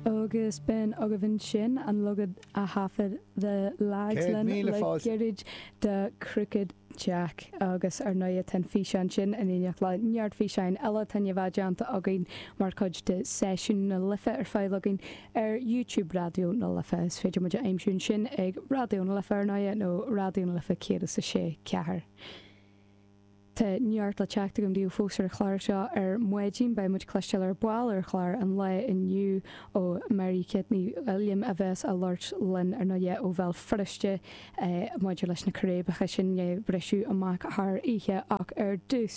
agus bhí againn ansin an leagan a thaifead the lads linn le gairid de Crooked Jack agus ar ndóigh tá an físeán sin in éineacht le neart físeáin eile atá déanta againn mar chuid de seisiún na life ar fáil daoibh ar youtube raidió na life is féidir muid a aimsiú ansin ag raidió na life ar ndóigh nó raidió na life 106 4 Tá neart le teacht agam daoibh fós ar an chlár seo ar maidin. Beidh muid ag cloisteáil ar ball ar chlár an lae inniu ó Mary Kate Ní Uilliam a bheas á labhairt linn ar ndóigh ó Bhéal Feirste maidir leis na círéibeacha sin a briseadh amach thar oíche ach ar dtús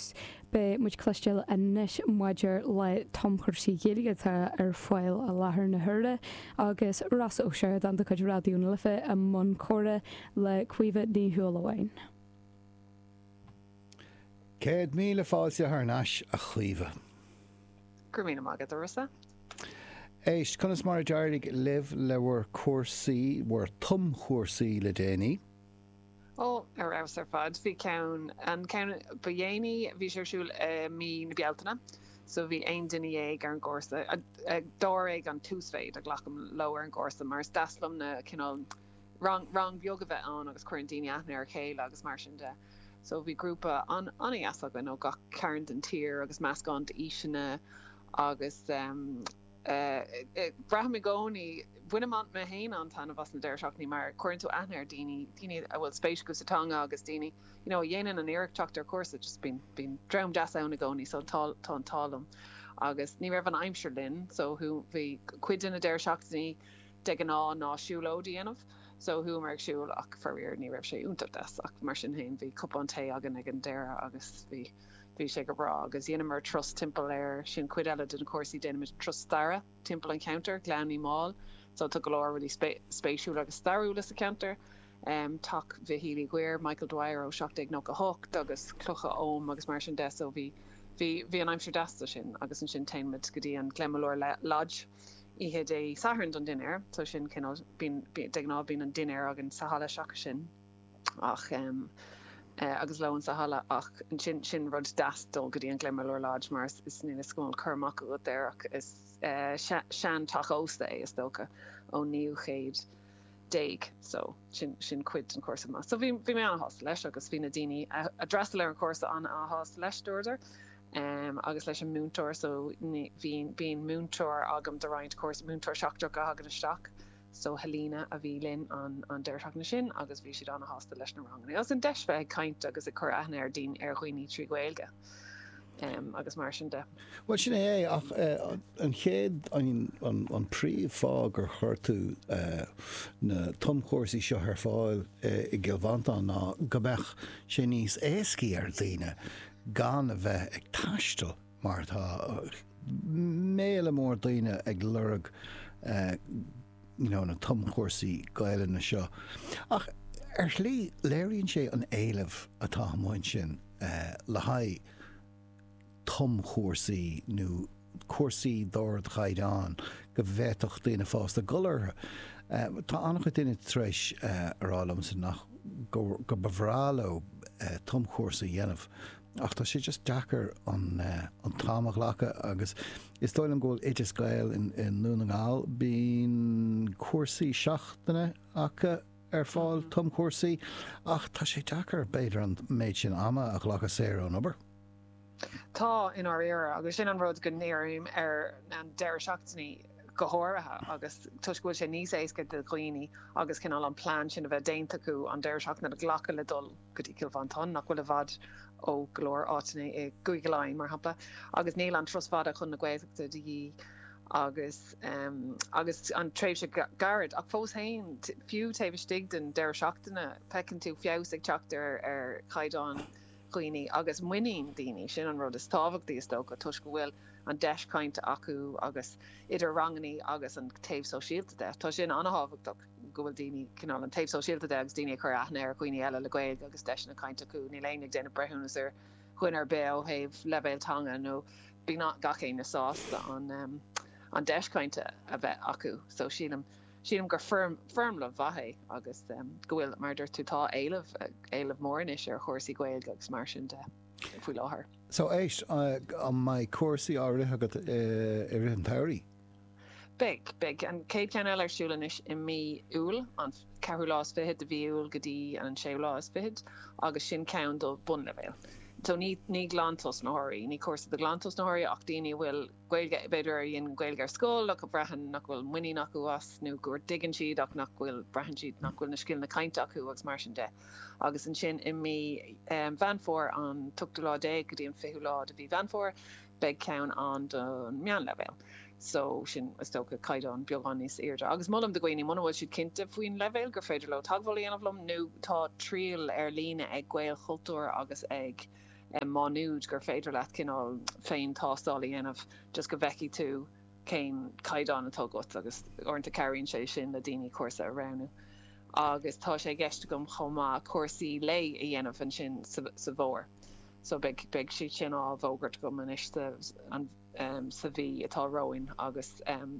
beidh muid ag cloisteáil anois maidir le tumchúrsaí Gaeilge atá ar fáil i láthair na huaire agus Rossa Ó Sioradáin de chuid Raidió na Life i mbun comhrá le Caoimhe Ní Shúilleabháin. Céad míle fáilte thar n-ais, a Chaoimhe. Go raibh míle maith agat, a Rossa. Éist, conas mar a d'éirigh libh le bhur gcúrsaí, bhur tumchúrsaí le déanaí? Ó, ar fheabhas ar fad. Bhí ceann, an ceann ba dhéanaí, bhí sé ar siúl i mí na Bealtaine, so bhí aon duine dhéag ar an gcúrsa. Dáréag an t-uasmhéid a ghlacaim leo ar an gcúrsa mar is deas liom na cineál, rang, rang beag a bheith ann agus cuireann daoine aithne ar a chéile agus mar sin de. So bhí grúpa an, an-dheas againn ó gach cearn den tír agus meascán d'aoiseanna agus ehm eh braithim i gcónaí, bainim an, mé féin an-taitneamh as na deireadh seachtainí mar cuireann tú aithne ar daoine, daoine a bhfuil spéis acu sa teanga agus daoine you know a dhéanann an iarracht teacht ar chúrsa just bíonn, bíonn dream deas ann i gcónaí so tá, tá an t-ádh liom. Agus ní raibh an aimsir linn so bhí cuid de na deireadh seachtainí, de ghnáth ná siúlóid a dhéanamh, so chuamar ag siúl ach faraor ní raibh sé iontach deas, ach mar sin féin bhí cupán tae againn ag an deireadh agus bhí bhí sé go breá agus dheineamar turas timpeall ansin, sin cuid eile de na cúrsaí déanaimid turas staire timpeall an cheantair, Gleann Uí Mháil, so tá go leor rudaí spéisiúla agus stairiúla sa cheantar, Teach Mhichíl Uí Dhuibhir, Michael Dwyer ó 1798 agus cloch oghaim agus mar sin de, so bhí bhí bhí an aimsir deas do sin agus ansin téimid go dtí an Glenmalure Lodge, oíche Dé Sathairn don dinnéar so sin cineál bíonn de ghnáth bíonn an dinnéar againn sa halla seachas sin ach em agus lón sa halla ach ansin sin rud deas dul go dtí an Glenmalure Lodge mar is is níl a fhios agam an bhfuil cur amach agat air ach is eh seanteach ósta é is dócha ón naoú chéad déag so sin, sin cuid den chúrsa chomh maith. So bhí, bhí mé an-shásta leis agus bhí na daoine a, a d'fhreastail ar an chúrsa an-shásta leis, dúradar. Um, agus leis an múinteoir so bíonn, bíonn múinteoir agam do roinnt cúrsaí, múinteoir seachtrach a thagann isteach, so Helena a bhí linn an, an deireadh seachtaine sin agus bhí siad an-shásta leis na ranganna. Agus an deis bheith ag caint agus ag cur aithne ar daoine, ar dhaoine trí Ghaeilge. agus mar sin de. Bhuel, sin é, ach an chéad, an príomh fáth gur chuir tú na tumchúrsaí seo ar fáil i gCill Mhantáin ná go mbeadh sé níos éascaí ar dhaoine gan a bheith ag taisteal mar tá méadú mór daoine ag lorg na tumchúrsaí Gaelainne seo. Ach ar shlí, léiríonn sé an éileamh atá amuigh ansin le haghaidh tumchúrsaí nó cúrsaí d'ardchaighdeán go bhféadfadh daoine fásta dul orthu. Tá an-chuid daoine tar éis a rá liomsa go mba bhreá leo tumchúrsa a dhéanamh, Ach tá sé just deacair an t-am a ghlacadh agus is dóigh liom go bhfuil Oideas Gael i nDún na nGall, bíonn cúrsaí seachtaine acu ar fáil, tumchúrsaí, ach tá sé deacair b'fhéidir an méid sin ama a ghlacadh saor ón obair. Tá, i ndáiríre, agus sin an rud go ndírím ar na deireadh seachtainí go háirithe agus toisc go bhfuil sé níos éasca do dhaoine agus cineál an plean sin a bheith déanta acu an deireadh seachtaine a ghlacadh le dul go dtí Cill Mhantáin, nach bhfuil i bhfad ó go leor áiteanna i gCúige Laighean, mar shampla, agus níl an turas fada chun na Gaeltachta de dhíth agus agus an tréimhse gairid. Ach fós féin, fiú taobh istigh den deireadh seachtaine, feiceann tú feabhas ag teacht ar chaighdeán dhaoine agus muinín daoine, sin an rud is tábhachtaí, is dócha, toisc go bhfuil an deis cainte acu agus idir ranganna agus an taobh sóisialta de, tá sin an-tábhachtach. go bhfuil daoine, cineál an taobh sóisialta de agus daoine ag cur aithne ar dhaoine eile le Gaeilge agus deiseanna cainte acu, níl éinne ag déanamh breithiúnas ar dhuine ar bith ó thaobh leibhéal teanga nó bíonn gach éinne sásta an an deis cainte a bheith acu. So sílim, sílim gur foirm, foirmle mhaith é agus go bhfuil, mar a dúirt tú, tá éileamh, éileamh mór anois ar chúrsaí Gaeilge agus mar sin de faoi láthair. So éist, an mbeidh cúrsaí á rith agat i rith an tsamhraidh? Beidh. Beidh an chéad cheann eile ar siúl anois i mí Iúil, an ceathrú lá is fichead de mhí Iúil go dtí an séú lá is fichead, agus sin ceann do bhunleibhéal. So ní ní glantosnaitheoirí, ní cúrsa do ghlantosnaitheoirí ach daoine a bhfuil Gaeilge, b'fhéidir a rinne Gaeilge ar scoil ach a bhraitheann nach bhfuil muinín acu astu nó gur dtuigeann siad ach nach bhfuil, braitheann siad nach bhfuil na scileanna cainte acu agus mar sin de. Agus ansin i mí Mheán Fómhair, an t-ochtú lá déag go dtí an fichiú lá de mhí Mheán Fómhair, beidh ceann ann don meánleibhéal so sin is dócha caighdeán beagán níos airde agus molaim do dhaoine muna bhfuil siad cinnte faoin leibhéal gur féidir leo teagmháil a dhéanamh liom nó tá triail ar líne ag Gaelchultúr agus ag Má Nuad gur féidir leat cineál féin-tástáil a dhéanamh just go bhfeicfidh tú cén caighdeán atá agat agus uaireanta cabhraíonn sé sin le daoine cúrsa a roghnú agus tá sé i gceist agam chomh maith cúrsaí lae a dhéanamh ansin sa bhfómhar. so beidh beidh siad sin á bhfógairt agam anois sa an sa mhí atá romhainn agus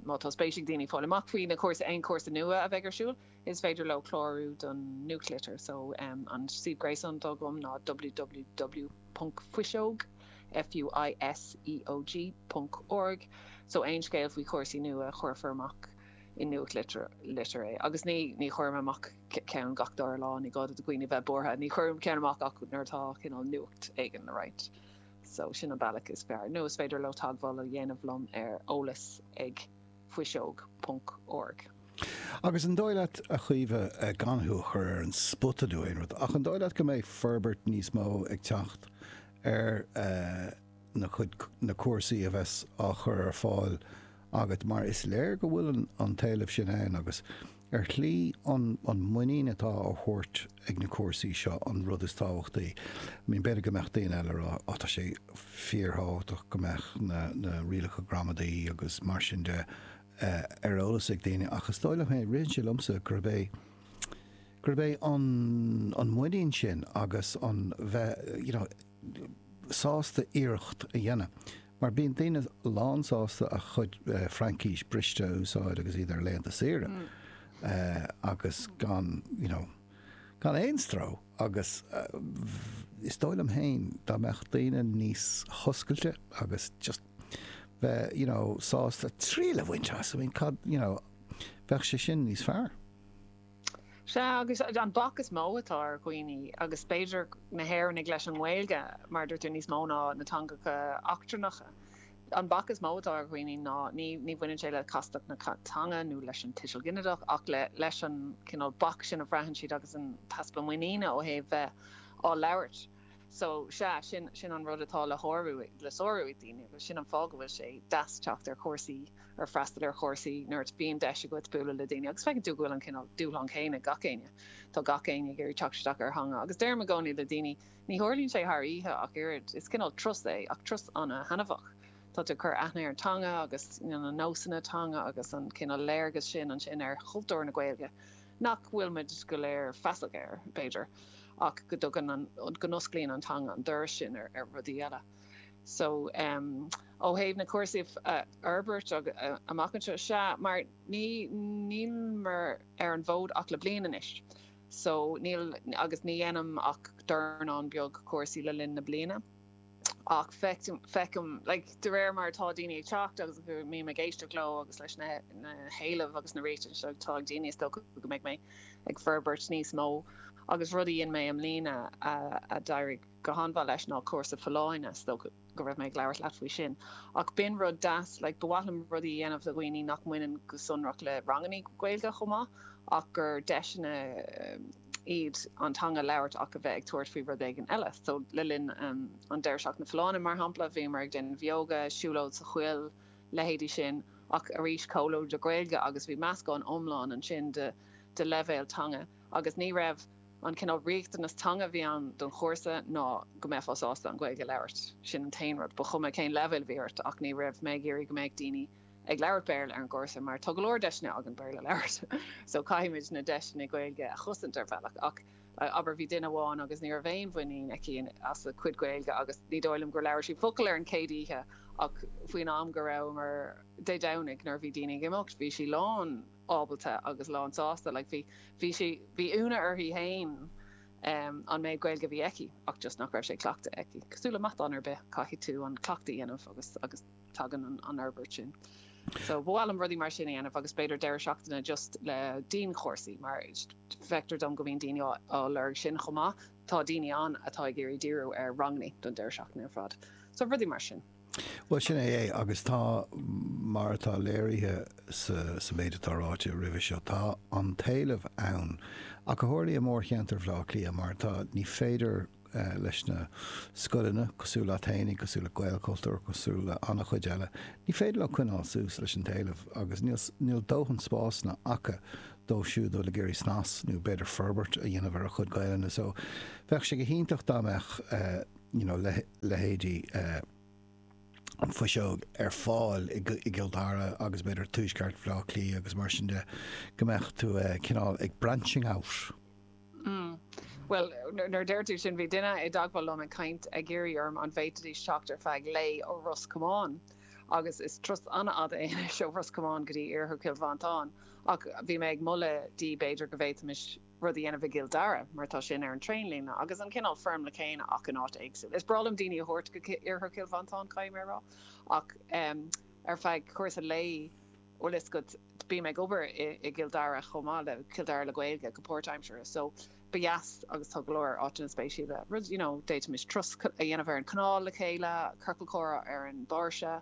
má tá spéis ag daoine fáil amach faoi na cúrsa aon chúrsa nua a bheidh ar siúl is féidir leo clárú don nuachtlitir so an suíomh gréasáin atá agam ná www ponc fuiseog FUISEOG ponc org so aon scéal faoi chúrsaí nua chuirfear amach i nuachtlitir é agus ní ní chuirim amach ceann gach dara lá, ní gá do dhaoine bheith buartha, ní chuirim ceann amach ach nuair atá cineál nuacht éigin le roinnt. So sin an bealach is fearr, nó is féidir leo teagmháil a dhéanamh liom ar eolas ag fuiseog.org. Agus an dóigh leat, a Chaoimhe, gan thú a chur ar an spota nó aon rud, ach an dóigh leat go mbeidh forbairt níos mó ag teacht ar na cuid na cúrsaí a bheas á gcur ar fáil agat mar is léir go bhfuil an t-éileamh sin ann agus Ar shlí, an muinín atá á thabhairt ag na cúrsaí seo an rud is tábhachtaí. I mean, b'fhéidir go mbeadh daoine eile ag rá, á, tá sé fíorthábhachtach go mbeadh na rialacha gramadaí agus mar sin de ar eolas ag daoine ach is dóigh liom, hey, ritheann sé liomsa gurb é, gurb é an muinín sin agus an bheith, you know, sásta iarracht a dhéanamh. Mar bíonn daoine lánsásta a gcuid Fraincis briste a úsáid agus iad ar laethanta saoire agus gan, you know, gan aon stró. Agus is dóigh liom féin dá mbeadh daoine níos hoscailte agus just bheith, you know, sásta triail a bhaint as, I mean, cad, you know, bheadh sé sin níos fearr. Sea, agus an bac is mó atá ar dhaoine, agus b'fhéidir na hÉireannaigh, leis an nGaeilge, mar a dúirt tú, níos mó ná na teangacha eachtrannacha, an bac is mó atá ar dhaoine ná, ní ní bhaineann sé le castacht na teanga nó leis an tuiseal ginideach, ach le leis an cineál bac sin a bhraitheann siad agus an t-easpa muiníne ó thaobh bheith á labhairt. So, sea, sin, sin an rud atá le shárú, le sárú ag daoine agus sin an fáth go bhfuil sé deas teacht ar chúrsaí, ar freastal ar chúrsaí nuair a bhíonn deis agat bualadh le daoine agus feiceann tú go bhfuil an cineál dúshlán céanna ag gach éinne. Tá gach éinne ag iarraidh teacht isteach ar theanga agus deirim i gcónaí le daoine, ní tharlaíonn sé thar oíche ach oiread, is cineál turas é ach turas ana-thaitneamhach. Tá tú ag cur aithne ar an teanga agus, you know, na nósanna teanga agus an cineál léargas sin ansin ar chultúr na Gaeilge. nach bhfuil muid go léir feasach air, b'fhéidir, ach go dtugann an, go n-osclaíonn an teanga an doras sin ar rudaí eile. So, em, ó thaobh na cúrsaí a fhorbairt amach anseo, sea, mar ní, níl mé ar an bhfód ach le bliain anois, so, níl, agus ní dhéanaim ach dornán beag cúrsaí le linn na bliana. ach feicim, like, de réir mar atá daoine ag teacht agus go mbím ag éisteacht leo agus leis na héilimh agus na réitigh seo atá ag daoine, is dócha go mbeidh mé ag forbairt níos mó agus rud a dhein mé i mbliana a d'éirigh go han-mhaith leis ná cúrsa folláine, is dócha go raibh mé ag labhairt leat faoi sin, ach b'in rud deas, like, ba mhaith liom rudaí a dhéanamh le dhaoine nach mbaineann go sonrach le rangannaí Gaeilge chomh maith ach gur deiseanna, iad an teanga a labhairt ach a bheith ag tabhairt faoi rud éigin eile. So le linn an Deireadh Seachtaine Folláine, mar shampla, bhíomar ag déanamh yoga, siúlóid sa choill, leithéidí sin, ach arís go hiomlán trí Ghaeilge agus bhí meascán iomlán ansin de de leibhéil teanga agus ní raibh, an cineál riachtanas teanga a bhí ann don chúrsa ná go mbeifeá sásta an Ghaeilge a labhairt. Sin an t-aon rud, ba chuma cén leibhéal a bhí ort ach ní raibh mé ag iarraidh go mbeadh daoine ag labhairt Béarla ar an gcúrsa mar tá go leor deiseanna againn Béarla a labhairt so caithfimid na deiseanna Gaeilge a chosaint ar bhealach ach abair bhí duine amháin agus ní raibh aon mhuinín aici as a cuid Gaeilge agus ní dóigh liom gur labhair sí focal ar an chéad oíche ach faoin am go rabhamar Dé Domhnaigh nuair a bhí daoine ag imeacht bhí sí lán ábalta agus lán sásta like bhí bhí sí bhí ionadh uirthi féin um, an méid Gaeilge a bhí aici ach just nach raibh sé cleachta aici. Cosúil le matán ar bith caithfidh tú an cleachtadh a dhéanamh agus agus tagann an fhorbairt sin. So ba mhaith liom rudaí mar sin a dhéanamh agus b'fhéidir deireadh seachtaine just le dianchúrsaí mar feictear dom go mbíonn daoine á lorg sin chomh maith. Tá daoine ann atá ag iarraidh díriú ar ranganna don deireadh seachtaine ar fad. So rudaí mar sin. Bhuel, sin é é agus tá, mar atá léirithe sa méid atá ráite roimhe seo, tá an t-éileamh ann ach go háirithe i mórcheantar Bhaile Átha Cliath mar tá, ní féidir, leis na scoileanna, cosúil leat fhéinig, cosúil le Gaelchultúr, cosúil le an-chuid eile, ní féidir leo coinneáil suas leis an t-éileamh agus níl, níl dóthain spásanna acu dóibh siúd a bhfuil ag iarraidh snas nó b'fhéidir forbairt a dhéanamh ar a chuid Gaelainne. So, bheadh sé go hiontach dá mbeadh you know, le, leithéidí An Fhuiseog ar fáil i, i gCill Dara agus b'fhéidir tuaisceart Bhleá Cliath agus mar sin de, go mbeadh tú cineál ag branching out. Mm. Bhuel, nuair a deir tú sin, bhí duine i dteagmháil liom ag caint, ag iarraidh orm an bhféadfaidís teacht ar feadh lae ó Ros Comáin, agus is turas an-fhada é anois ó Ros Comáin go dtí Iarthar Chill Mhantáin, ach bhí mé ag moladh di b'fhéidir go bhféadfaimis rud a dhéanamh i gCill Dara, mar tá sin ar an traein-líne, agus an cineál foirmle céanna ach in áit éagsúil. Is breá liom daoine a thabhairt go Iarthar Chill Mhantáin, caithfidh mé a rá, ach ar feadh cúrsa lae. bhfuil fhios agat, bím ag obair i gCill Dara chomh maith le Cill Dara le Gaeilge go páirtaimseartha so ba dheas agus tá go leor áiteanna spéisiúla rud you know d'fhéadfaimis turas a dhéanamh ar an canál le chéile, ciorcal comhrá ar an mbáirse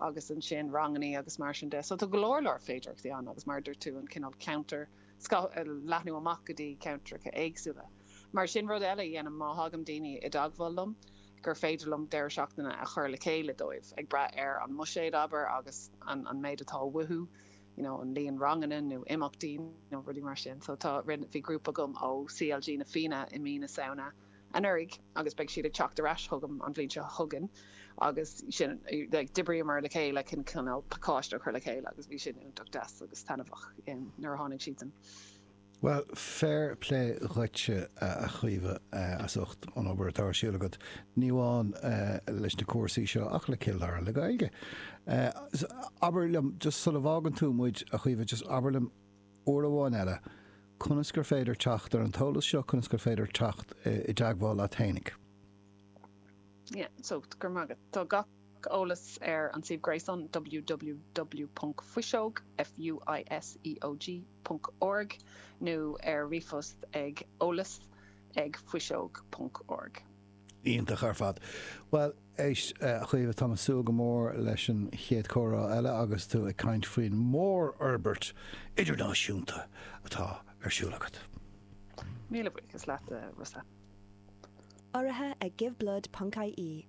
agus ansin rangannaí agus mar sin de so tá go leor leor féidearthachtaí ann agus mar a dúirt tú an cineál ceantar seo a leathnú amach go dtí ceantracha éagsúla mar sin rud eile a dhéanaim má thagann daoine i dteagmháil liom gur féidir liom deireadh seachtaine a chur le chéile dóibh, ag brath ar an mbuiséad, abair, agus an méid atá uathu, you know, an líon ranganna nó imeachtaí nó rudaí mar sin. So tá, rinne, bhí grúpa agam ó CLG Na Fianna i mí na Samhna anuraidh agus beidh siad ag teacht ar ais chugam an bhliain seo chugainn agus sin, like, d'oibríomar le chéile chun, you know, pacáiste a chur le chéile agus bhí sin iontach deas agus taitneamhach nuair a tháinig siadsan. Bhuel, fair plé dhuitse, a Chaoimhe, as ucht an obair atá ar siúl agat, ní amháin leis na cúrsaí seo ach le Cill Dara le Gaeilge. Abair liom, just sula bhfágann tú muid, a Chaoimhe, just abair liom uair amháin eile, conas gur féidir teacht ar an eolas seo, conas gur féidir teacht i dteagmháil leat fhéinig? Yeah, so, go raibh maith agat. Tá gach. Gach eolas ar an suíomh gréasáin www.fuiseog, F-u-i-s-e-o-g, ponc org nó ar ríomhphost ag eolas ag fuiseog ponc org. Iontach ar fad. Bhuel, éist a Chaoimhe, táim ag súil go mór leis an chéad chomhrá eile agus tú ag caint faoin mórfhorbairt idirnáisiúnta atá ar siúl agat. Míle buíochas leatsa. Urraithe ag Give Blood ponc ie.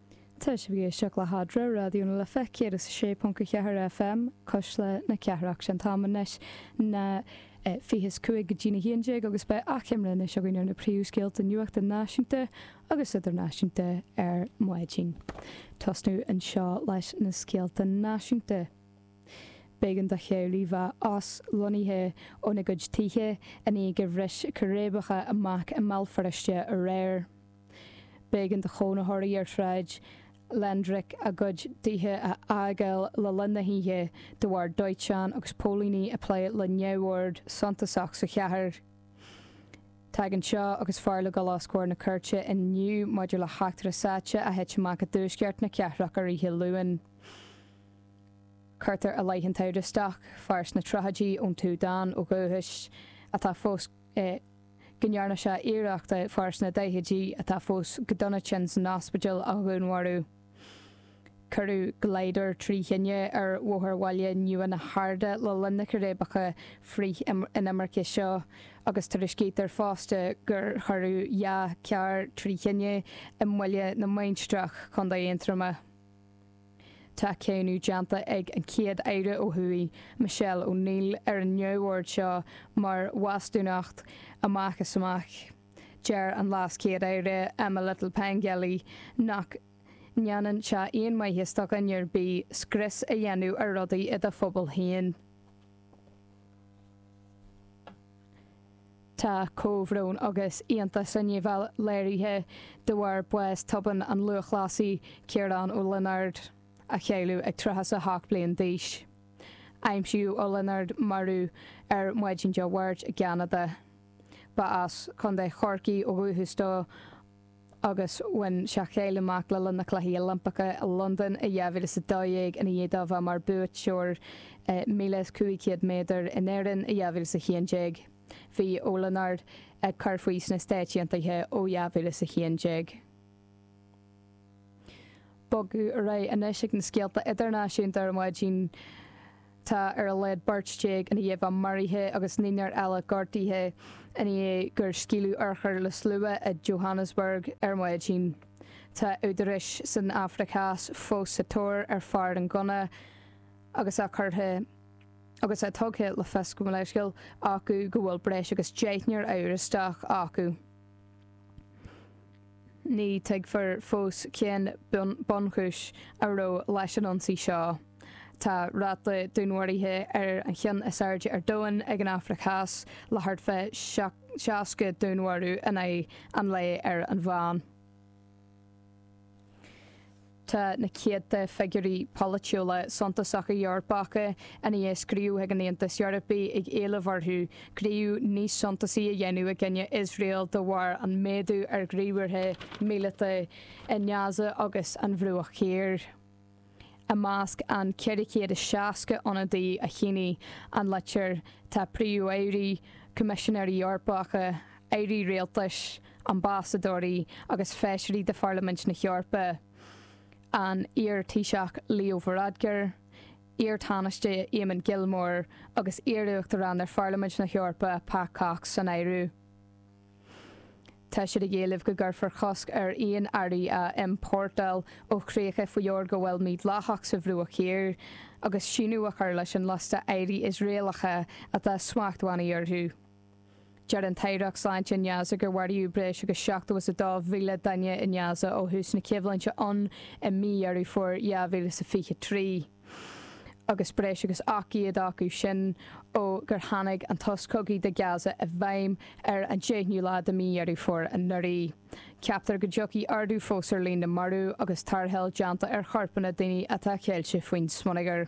Tá sibh ag éisteacht le hAdhmhaidin Raidió na Life 106.4 FM, Cuisle na Cathrach. Sé an t-am anois ná 20 is 5 go dtína 11 agus beidh achoimre anois againn ar na príomhscéalta nuachta náisiúnta agus idirnáisiúnta ar maidin. Ag tosnú anseo leis na scéalta náisiúnta. B'éigean do theaghlaigh bheith aslonnaithe óna gcuid tithe i ndiaidh gur bhris ciréibeacha amach i mBéal Feirste aréir. B'éigean do chónaitheoirí ar Shráid Landrick a gcuid tithe a fhágáil le linn na hoíche de bharr dóiteán agus póilíní ag plé le neamhord suntasach sa chathair. Tagann seo agus fear le dul os comhair na cúirte inniu maidir le heachtra sáite a thit amach i dtuaisceart na cathrach ar oíche Luain. Cuirtear i leith an amhrastaigh, fear sna tríochaidí ón tSúdáin ó dhúchais atá fós i. go ndearna sé iarracht fear sna daichidí, atá fós go dona tinn san ospidéal, a dhúnmharú. Cuireadh glider trí thine ar Bhóthar Bhaile Nua na hArda le linn na ciréibeacha frith-inimirce seo agus tuairiscítear fosta gur cuireadh dhá charr trí thine i mBaile na Mainistreach, Contae Aontroma. Tá cáineadh déanta ag an gCéad-Aire ó thuaidh, Michelle O'Neill, ar an neamhord seo mar bhastúnacht amach is amach. Deir an LeasChéad-Aire, Emma Little-Pengelly, nach ndéanann sé aon mhaitheas do dhuine ar bith scrios a dhéanamh ar rudaí i do phobal féin. Tá comhbhrón agus iontas ina dhiaidh bheith léirithe de bharr bás tobann an lúthchleasaí Ciarán Ó Lionáird, a cailleadh ag 38 bliain d'aois. Aimsíodh Ó Lionáird marbh ar maidin Dé Máirt i gCeanada. Ba as Co. Chorcaí ó dhúchas dó. agus bhain sé cáil amach le linn na Cluichí Oilimpeacha i Londain i 2012 ina dhiaidh dó bheith mar buaiteoir 1500 méadar in Éirinn i 2011. Bhí Ó Lionáird ag cur faoi sna Stáit Aontaithe ó 2011. bogadh ar aghaidh anois ag na scéalta idirnáisiúnta ar maidin. Tá ar a laghad beirt déag ina dhiaidh bheith maraithe agus naonúr eile gortaithe ina dhiaidh gur scaoileadh urchair le slua i Johannesburg ar maidin. Tá údaráis san Afraic Theas fós sa tóir ar fear an ghunna agus é curtha agus é tugtha le fios gabh mo leithscéal acu go bhfuil breis agus deichniúr amhrastach acu. Ní tuigfear fós cén bunchúis a raibh leis an ionsaí seo. Tá ráta dúnmharaithe ar an cheann is airde ar domhan ag an Afraic Theas, le thart fá 60 dúnmharú in aghaidh an lae ar an mheán. Tá na céadta figiúirí polaitiúla suntasacha Eorpacha ina dhiaidh scríobh chuig an Aontas Eorpaigh ag éileamh orthu gníomh níos suntasaí a dhéanamh i gcoinne Iosrael de bharr an méadú ar ghníomhartha míleata i nGaza agus an Bhruach Thiar. I measc an 460 ionadaí a shínigh an litir tá príomh-airí, coimisinéirí Eorpacha, airí rialtais, ambasadóirí agus feisirí de Pharlaimint na hEorpa, an iar-Thaoiseach Leo Varadkar, iar-Thánaiste Eamon Gilmore agus iar-Uachtarán ar Pharlaimint na hEorpa Pat Cox san áireamh. Tá siad ag éileamh go gcuirfear cosc ar aon earraí a iompórtáil ó chríocha faoi fhorghabháil mídhleathach sa Bhruach Thiar agus síneadh a chur leis an liosta earraí Iosraelacha atá smachtbhannaí orthu. Deir an tAireacht Sláinte i nGaza gur maraíodh breis agus seachtó is a dó mhíle duine i nGaza ó thús na coimhlinte ann i mí Dheireadh Fómhair 2023 agus breis agus ocht gcéad acu sin ó gur tháinig an sos cogaidh do Gaza i bhfeidhm ar an deichnú lá de mí Dheireadh Fómhair anuraidh. Ceaptar go dtiocfaidh ardú fós ar líon na marbh agus tarrtháil déanta ar chorpanna daoine atá ceilte faoin smionagar.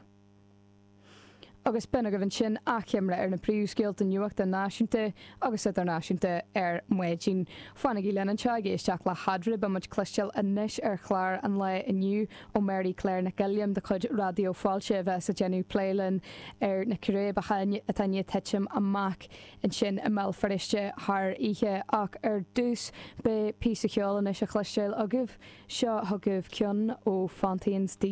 agus b'in agaibh ansin achoimre ar na príomhscéalta nuachta náisiúnta agus idirnáisiúnta ar maidin. Fanaigí linn anseo ag éisteacht le hAudrey, beimid cloisteáil anois ar chlár an lae inniu ó Mary Clare Nic Uilliam de chuid Raidió Fáilte a bheas ag déanamh plé linn ar na círéibeacha atá i ndiaidh titim amach ansin i mBéal Feirste thar oíche ach ar dtús beidh píosa ceoil anois a chloisteáil agaibh, seo chugaibh ceann ó Fontaines D.